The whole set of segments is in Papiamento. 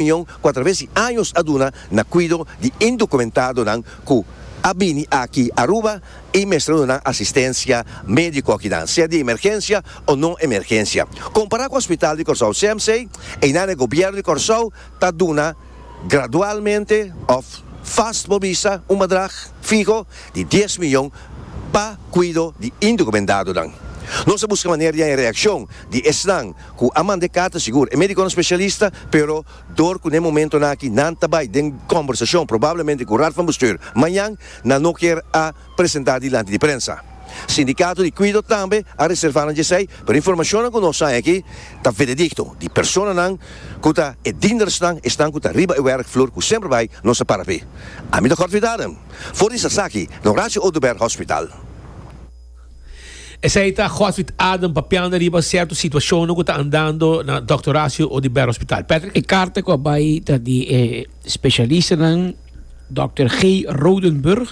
Union cu a traves di años a duna na cuido di indocumentado-nan cu a bini aki Aruba y mester duna nan asistencia medico akinan, sea di emergencia o no emergencia. Compara cu Hospital di Corsou CMC, einan e Gobierno di Corsou ta duna gradualmente of vast bo bisa un badrag fiho di dies miyon pa cuido di indocumentado-nan. Nos a busca manera di haña reaccion di esnan Cu a manda e carta sigur e mediconan specialista, pero dor cu na e momentonan aki nan ta bay den combersacion probablemente cu Raad van Bestuur mañan, nan no kier a presenta dilanti di prensa. Sindicato di Cuido tambe a reserva nan djesey, pero informacionnan cu nos hay aki ta veredicto, di personanan cu ta e diendersnan, esnan cu ta riba e werkvloer cu semper bay nos a para p'e. Ami ta Cort Vidadem, for di Sasaki, na Horacio Oduber Hospital. Esei ta Godfried Adam papiando riba cierto situacionnan cu ta andando na Dòkter Horacio Odibert Hospital. Patrick. E carta cu a bay ta di e specialistanan Dòkter G. Rodenburg,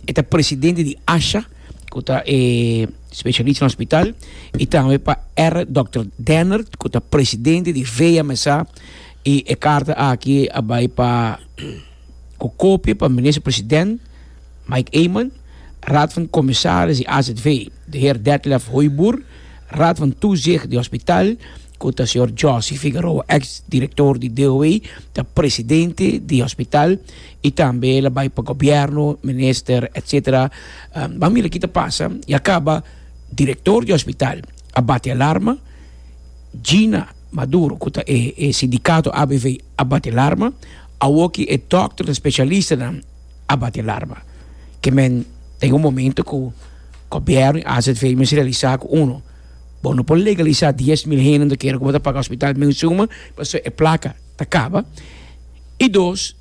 e ta presidente di ASHA, cu ta e specialista na hospital, y tambe pa R. Dòkter Dennert, cu ta presidente di VMSA, y e carta aki a bay pa cu copia pa Minister President, Mike Eman, Raad van Commissaris di azv, de heer Detlef Hooiboer, Raad van Toezicht di hospitaal, ku ta señor Josy Figueroa, eks direktor di DOH, ta presidente di hospitaal i tambe el a bai pa gobièrnu, minister etc. Ban mira ki ta pasa, ya kaba direktor di hospitaal a bati alarma, Gina Maduro ku ta e sindikato avv a bati alarma, awoki e dòkternan, spesialistanan. a bati alarma. Ke men ten un momento ku gobièrnu i azv mester realisá ku uno, bo no por legalisá dies mil hende anto kere ku bo ta paga hospital men suma pasobra e plaka ta kaba. I dos,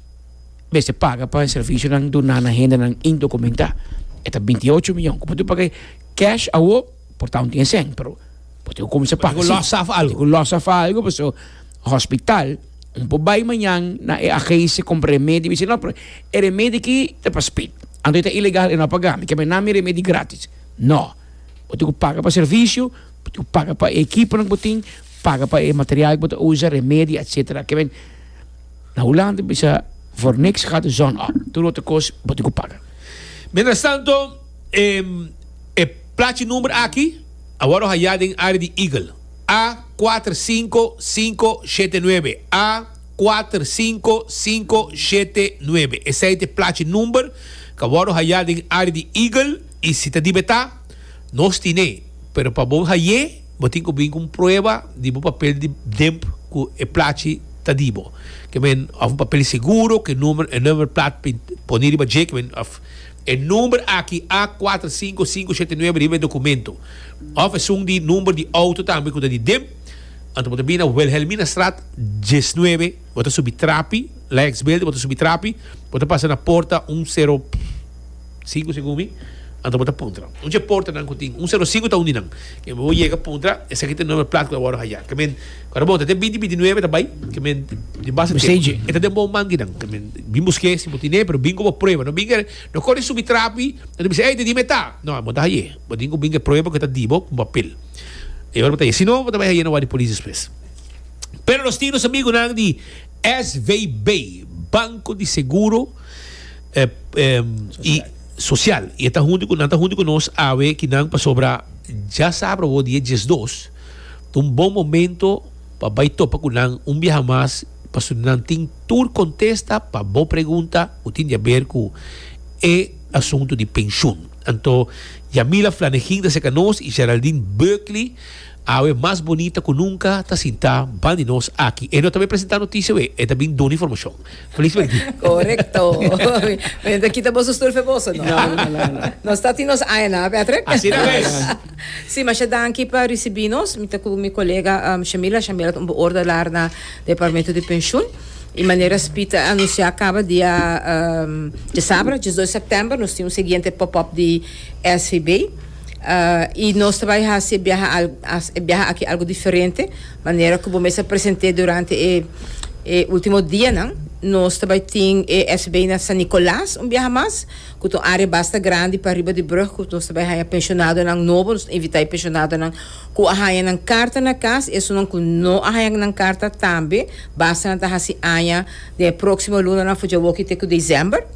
mester paga pa e servisionan duna na hendenan indokumentá. E ta binti ocho mion. Ku bo ta pag'é kèsh awo por ta un tiensen, pero bo tin ku kuminsá paga si. Bo tin ku lòs af algu. Bo tin ku lòs af algu pasobra hospital. Un por bai mañan na e agensia compra remedi mi si no pero e remedi aki ta pa spit anto e ta ilegal e no a paga mi kiba nan mi remedi gratis no bo tin cu paga pa servicio bo tin cu paga pa e ekiponan cu bo tin paga pa e material cu bo ta usa remedi etcetera kiba na Hulanda bisa voor niks gaat de zon op tur otro cos bo tin cu paga. Mientras tanto. E plachi number aki a wòrdu hayá den área di Eagle A kuater sinku sinku shete nuebe, A kuater sinku sinku shete nuebe. Esei ta e plachi number ku a wòrdu hayá den área di Eagle i si ta dibetá nos tin'é. Pero pa bo hay'é bo tin ku bini ku un prueba di bo papel di demp ku e plachi ta di bo. Ke men òf un papel di seguro ku e number plat poní riba dje ke men òf. E number aki a kuater sinku sinku shete nuebe riba e dokumento, òf esun di number di outo tambe ku ta di dem, anto bo ta bini na Wilhelminastraat diesnuebe, bo ta subi trapi, Lijksbeelden, bo ta subi trapi, bo ta pasa na porta un sero sinku segun mi, anto bo ta puntra un dje portanan ku tin un sero sinku ta un di nan, bo yega puntra esaki ta e number plat ku ta wòrdu haya. Ora bo ta den binti binti nuebe ta bai ke men den basa tempo. Mesteji. E ta den bo manki nan ke men bin busk'é si bo tin'é pero bin ku bo prueba no bin no kore subi trapi no ta bisa ey te di me ta no amo ta haye bo tin ku bin ku e prueba ke ta di bo ku papel e ora bo ta haye si no bo ta bai haye na wak di polis despues pero nos tin nos amigunan di SVB Banco di Seguro i Social i e ta huntu ku nan ta huntu ku nos awe ki nan pasobra ya sabra bo di e diesdos. Ta un bon momento pa bai topa cu nan un biaha mas pasobra nan tin tur contesta pa bo pregunta cu tin di a ber cu e asunto di pensioen. Anto Yamila Flanegin ta cerca nos y Geraldine Burkley, awe mas bonita cu nunca, ta sinta ban di nos aki. E no ta bay presenta noticia awe, e ta bin duna informacion. Felismente. Korekto. Mi ta kita boso stul fe boso no. No no no no. Nos ta tin nos aña nan a Patrick. Asina mes. Si masha danki pa risibi nos. Mi ta ku mi kolega Shamila, Shamila ta un beoordelaar na departamento di penshun. I manera SPI ta anunsia kaba dia djasabra, dies dos sèptèmber, nos tin un siguiente pop up di SVB. I nos ta bai hasi e biaha aki algu diferente. Manera ku bo mes a present'é durante e e último dianan, nos ta bai tin e FCB na San Nicolas un biaha mas, ku ta un área basta grandi pariba di brug ku nos ta bai haña pensionadonan nobo. Nos ta invitá e pensionadonan ku a haña nan karta na kas i esunnan ku no a haña nan karta tambe basta nan ta hasi aña den e próksimo lunanan for djawoki te ku desèmber.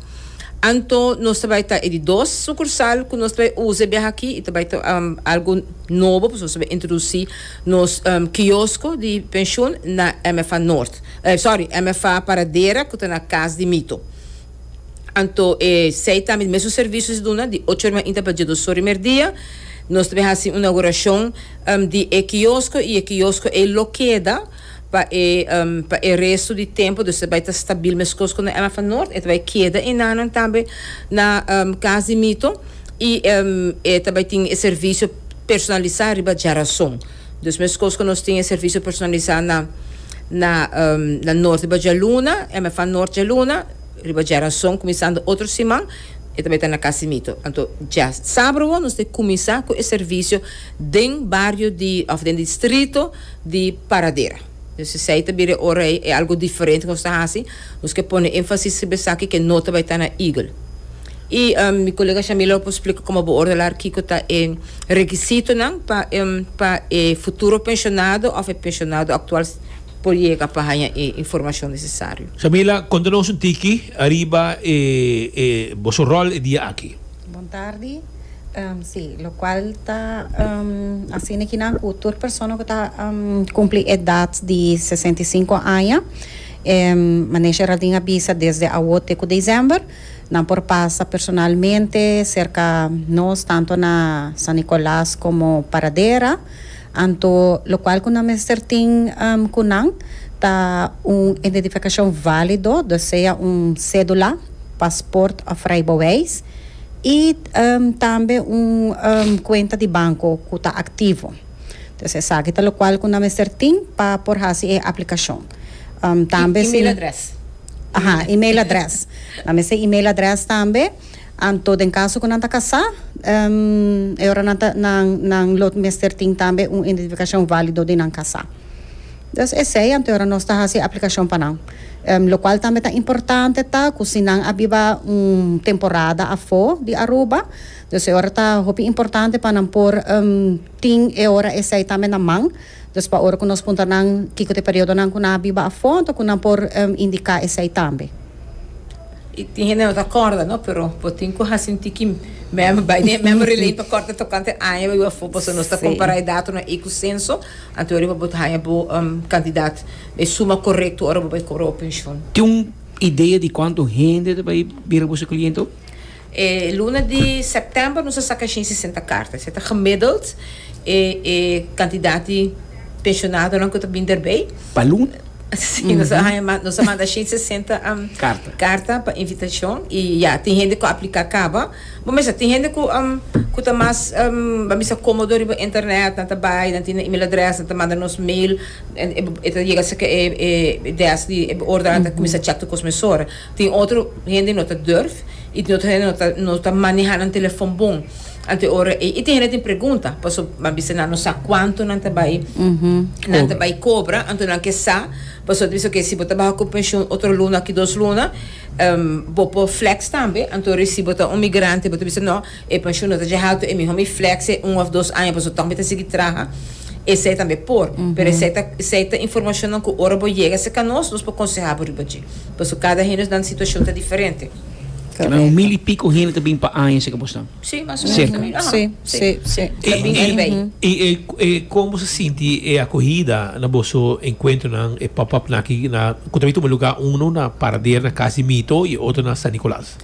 Anto nos ta bai ta e di dos sukursal ku nos ta bai usa e biaha aki i ta bai ta algu nobo pasobra nos ta bai introdusí. Nos kiosko di penshun na MFA Nort, sorry, MFA Paradera ku ta na Kas di Mito. Anto e sei tambe di mesun servishon di duna di ocho ormainta pa dje dos ora di merdia. Nos ta bin hasi un naugurashon di e kiosko i e kiosko ei lo keda pa e pa e resto di tempo, dus ta bai ta stabil meskos ku na MFA Nort. E ta bai keda e nannan tambe na Kas di Mito i e ta bai tin e servisio personalisá riba djarason. Dus meskos ku nos tin e servisio personalisá na na na Nort riba djaluna, MFA Nort djaluna, riba djarason kuminsando otro siman e ta bai ta na Casimito. Anto dja sabrobo nos ta e kuminsá ku e servisio den bario di òf den distrito di Paradera. Pues esei ta bira e ora ei, e algu diferente ku nos ta hasi. Nos ke pone énfasis riba esaki ke no ta bai ta na Eagle. Y mi colega Shamila por splica como bo ordelar kico ta e requisitonan pa pa e futuro pensionado of e pensionado actual por yega pa haya e informacion necesario. Shamila, conta nos un tiki ariba e e boso rol e dia aki. Bon tardi. Si, locual ta hacina kinan cu tur persona cu ta cumpli edad di sesenta y cinco aña, manesh Heraldin a bisa desde awo te cu december, Nan por pasa personalmente serka nos tanto na San Nicolas como Paradera anto locual cu nan mester tin cu nan ta un identificacion valido ta sea un cedula, pasport of rijbewijs y tambe un cuenta di banco cu ta activo. Entonces esaki ta locual cu nan mester tin pa por haci e aplicacion. Tambe si. Aha, email address. Nan mester email address tambe. Anto den caso cu nan ta casá, em, e ora nan ta, nan, nan lo mester tin tambe un identificacion válido di nan casá. Dus esey anto e ora nos ta haci e aplicacion pa nan. Em, locual tambe ta importante ta cu si nan a biba un temporada afó di Aruba, dus e ora ta hopi importante pa nan por, em, tin e ora esey tambe na man. Dus pa ora ku nos punta nan kiko ta e periodonan ku nan a biba afó, anto ku nan por indiká esei tambe. I tin hende no ta kòrda, no, pero bo tin ku hasi un tiki mem bai den e memory lane pa kòrda tokante aña bo biba afó, pasobra nos ta kompará e datonan ei ku senso, anto riba bo ta haña bo kantidat, e suma korekto ora bo bai kobra bo penshon. Tin un idea di kuantu hende ta bai bira boso kliente? E luna di September nos a saka shin sesenta karta. Esei ta gemiddeld e e kantidat di pensionadonan ku ta bin derbei. Pa luna? Si, nos a haña manda, nos a manda shin sesenta karta pa invitashon i ya, tin hende ku a apliká kaba. Bo mester sa, tin hende ku ku ta mas, ba bisa, kómodo riba internet, nan ta bai, nan tin nan email adrès, nan ta manda nos mail, e ta yega serka e e desk di e ordenador, nan ta kuminsá chèk tur kos mesora. Tin otro hende no ta durf y tin otro hende no ta maneha nan telefon bon anto ora ey. Y tin hende tin pregunta paso a bisa nan no sa cuanto nan ta bay nan ta bay cobra anto nan ke sa paso nan ta bisa ok si bo ta baha cu pension otro luna aki dos luna bo por flex tambe anto ora y si bo ta un migrante bo ta bisa no. E penshun no ta dje haltu, e mihó mi flèkse un òf dos aña pasobra tòg mi ta sigui traha. Esei tambe por, pero esei ta esei ta informashonnan ku ora bo yega serka nos, nos por konsehá bo riba dje. Pasobra kada hende nan situashon ta diferente. Mira, un mil i piko hende ta bini pa aña serka bosnan? Sí, mas o menos Serka. un mil. Ahá, Sí, sí. sí, sí. I Ta bini i erbei. i e e kon boso sinti e akohida na boso enkuentronan, e pòp-òp nan aki na ku ta bin tuma lugá uno na Paradera na kas di Mito i otro na San Nikolas?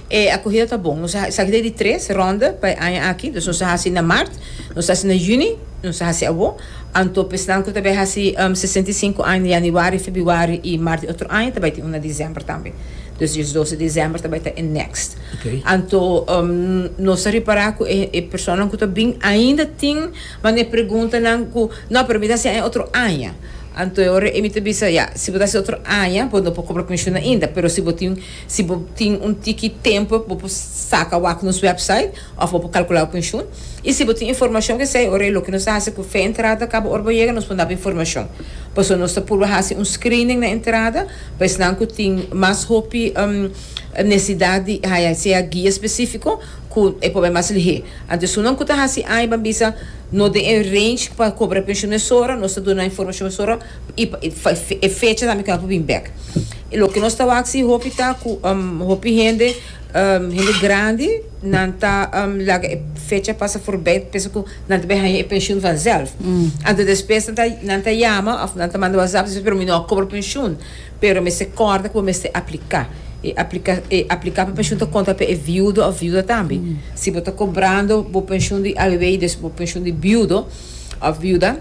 E acogida ta bon. Nos a sa acogida di tres ronda pa e aña aki. Dus nos a haci na mart, nos a haci na juni, nos a haci awo. Anto pa esnan cu ta bay haci sesenta i sinku aña na januari, febuari y mart di otro aña ta bay tin un na december tambe. Dus di dos di december ta bay ta e next. Anto nos ta repara cu e personanan cu ta bin ainda tin manda e preguntanan cu no, pero mi ta haci aña otro aña. Anto e ora ey mi ta bisa ya, si bo ta haci otro aña bo no por cobra comision ainda, pero si bo tin. Si bo tin un tiki tempu bo por saca wak nos website of bo por calcula cu inshun. Y si bo tin informacion cu esey ora y loke nos ta haci cu fe entrada caba ora bo yega nos por naba informacion. Pasobra nos ta purba haci un screening na entrada pa esnan cu tin mas hopi necesidad di haya sea guia specifico cu e por bai mas lihé. Anto esunnan cu ta haci aña ban bisa no den e range pa cobra pensioen esora nos ta duna informacion esora. i pa e fecha tambe ku el por bin bek. Loke nos ta wak si hopi ta ku hopi hende, hende grandi, nan ta laga e fecha pasa forbei ta pensa ku nan ta bin haña e penshun vanzelf. Anto despues nan ta nan ta yama òf nan ta manda wazap di sòn mi no a kobra penshun pero mester kòrda ku bo mester apliká. E apliká e apliká pa penshun ta konta pa e viudo òf viuda tambe. Si bo ta kobrando bo penshun di abb i bo penshun di biudo. òf biuda.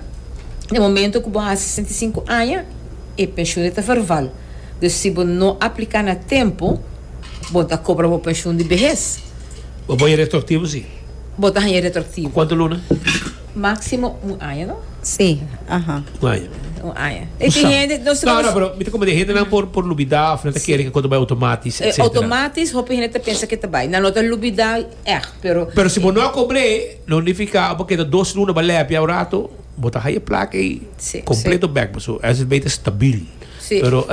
Den momentu ku bo hasi sesenta i sinku aña, e penshunnan ta verval. Dus si bo no apliká na tempu, bon ta kobra bo penshun di behes. Bo por haña retroaktivo? Sí. Bo ta haña retroaktivo. Ku kuantu luna? Máksimo un aña, no? Sí. Aha. Un aña. Un aña. E tin hende, nos ta. No, no, pero mi ta komo den hendenan por, por lubidá òf nan ta kere ku e konta bai outomátis, etsetera. Outomátis, hopi hende ta pensa ku e ta bai. Nan lo ta lubidá. echt pero. Pero si bo no a cobre no nifica bo keda dos luna ba lepia un rato bo ta haya placa ey completo bek bo so es beter stabil pero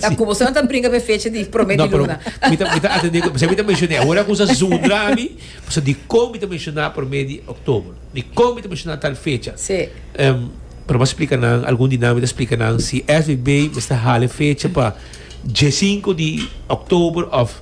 ta cu boso no ta brinca be fecha di prome di luna mi ta mi ta atende pasobra mi ta menciona e ora cu sa zundra mi pasobra dicon mi ta menciona prome di october dicon mi ta menciona tal fecha pero mi a splica nan algun di nan mi ta splica nan si SBB mester hala e fecha pa dje cinco di october of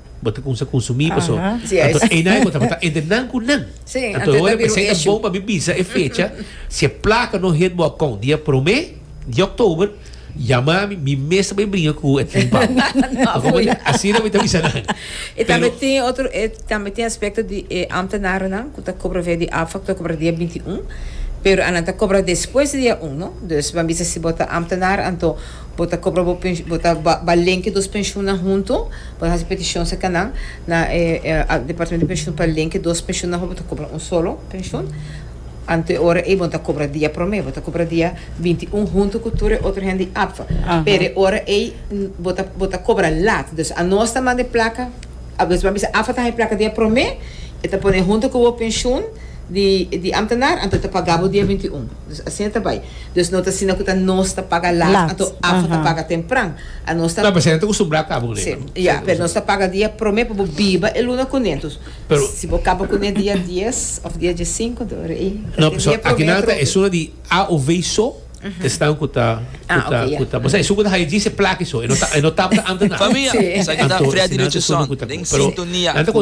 bo ta kumsa konsumí paso anto eina e bo tabata entre nan ku nan anto e ora p'esei ta bon pa mi bisa e fecha si e plaka no hit bo akon di e promé di òktober yama mi mi mes ta bai bringa ku e tren pau asina mi ta bisa nan E tambe tin otro e tambe tin aspekto di e amtenarennan ku ta kobra via di afak ta kobra dia binti un pero anan ta kobra despues di dia un no dus ban bisa si bo ta amtenar anto bo ta kobra bo bo ta ba ba lenke dos penshunnan huntu. Bo ta hasi petishon sa ka nan na e Departamento di Penshun pa lenke dos penshunnan hopi bo ta kobra un solo penshun. Anto e ora ei bo no ta kobra dia promé, bo ta kobra dia binti i un huntu ku tur e otro hende di APFA. Pero e ora ei bo ta bo ta kobra lat. Dus a nos ta manda e plaka, dus bo a bisa APFA ta haña e plaka dia promé, e ta pone huntu ku bo penshun di di amtenar, anto e ta paga bo dia binti i un. Nos asina ta bai. Nos no ta asina cu ta nos ta paga laat anto afo ta paga tempran. A nos ta. Claro, pero esaki ta costumbrá caba cu e. Sí, ya, pero nos ta paga dia prome pa bo biba e luna cune. Entos, si bo caba cune dia dies of dia diescinco, entos ora ey ta tin dia prome. No, pero esuna di a o v so ta esnan cu ta, cu ta, cu ta, pasobra esun cu ta haya djis e plaki so, e no tabata antes nan. Famia, esaki ta Freddy Richardson den sintonia cu.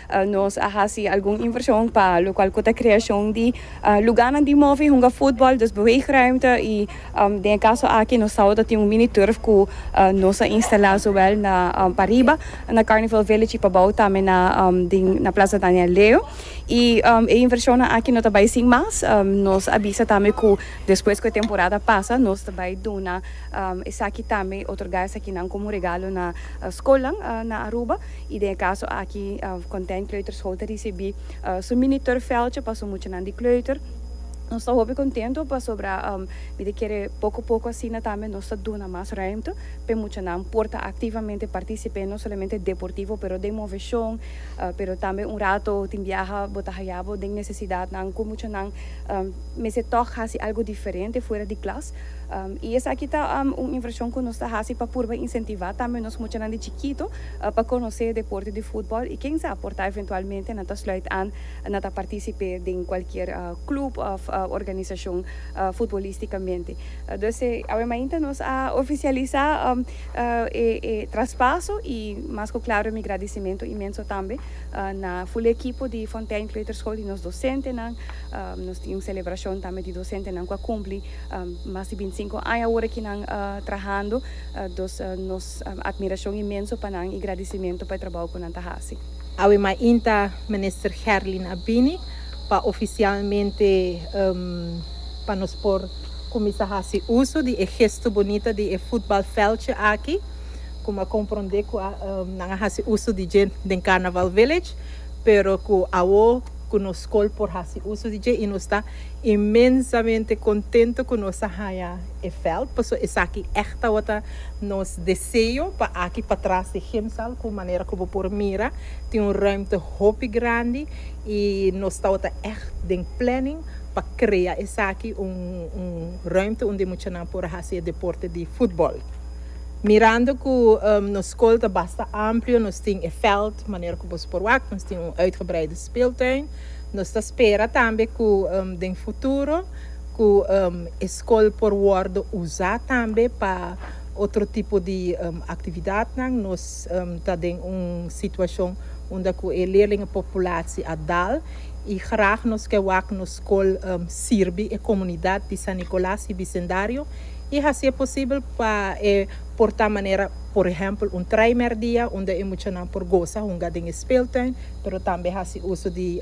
Nos a hasi algun invershon pa lokual ku ta kreashon di lugánan di move hunga futbòl, dus beweegruimte i den e kaso aki nos sabado tin un mini turf ku nos a instalá zowel na pariba na Carnival Village i pabou tambe na den na Plaza Daniel Leo. I e invershonnan aki no ta bai sin mas, nos a bisa tambe ku despues ku e temporada pasa nos ta bai duna esaki tambe, otorgá esakinan komo regalo na skolnan na Aruba. y den e caso aki Content Kleuterschool ta ricibi su mini turfveldje pa su muchanan di kleuter. Nos ta hopi contento pasobra mi ta kere poco poco asina tambe nos ta duna mas ruimte p'e muchanan por ta activamente particip'e no solamente deportivo pero den movecion pero tambe un rato tin biaha bo ta hayabo den necesidadnan cu muchanan mester toch haci algo diferente fuera di klas y esaki ta un inversion cu nos ta haci pa purba incentiva tambe nos muchanan di chikito. pa conoce deporte di futbol y ken sa porta eventualmente nan ta sluit aan na ta participe den cualkier club of organisacion futbolisticamente. Dus awe mainta nos a oficialisa e traspaso y mas cu claro mi gradicimento inmenso tambe na full ekipo di Fontein Kleuterschool y nos docentenan. Nos tin un celebracion tambe di docentenan cu a cumpli mas di binti sinco aña awor aki nan trahando. Dus nos. Admiracion inmenso pa nan y gradicimento pa e trabao cu nan ta haci. Awe mainta Minister Gerlin a bini pa oficialmente pa nos por cuminsa haci uso di e gesto bonita di e futbalveldje aki cu mi a compronde cu nan a haci uso di dje den Carnaval Village pero cu awo cu nos school por haci uso di dje y nos ta inmensamente contento cu nos a haya e veld paso esaki echt tawata nos deseo pa aki patras di Gimsal cu manera cu bo por mira tin un ruimte hopi grandi y nos tawata echt den planning pa crea esaki un un ruimte unda e muchanan por a haci e deporte di futbol mirando cu nos school ta basta amplio nos tin e veld manera cu boso por wak nos tin un uitgebreide speeltuin nos ta spera tambe cu den futuro. Ku e skol por wòrdu usá tambe pa otro tipo di aktividatnan. Nos ta den un situashon unda ku e leerlinga populatie a dal i grag nos ke wak nos skol sirbi e komunidat di San Nikolas i bisendario i hasié posibel pa e por ta manera por ehèmpel un traimèr dia unda e muchanan por gosa hunga den e speeltuin pero tambe hasi uso di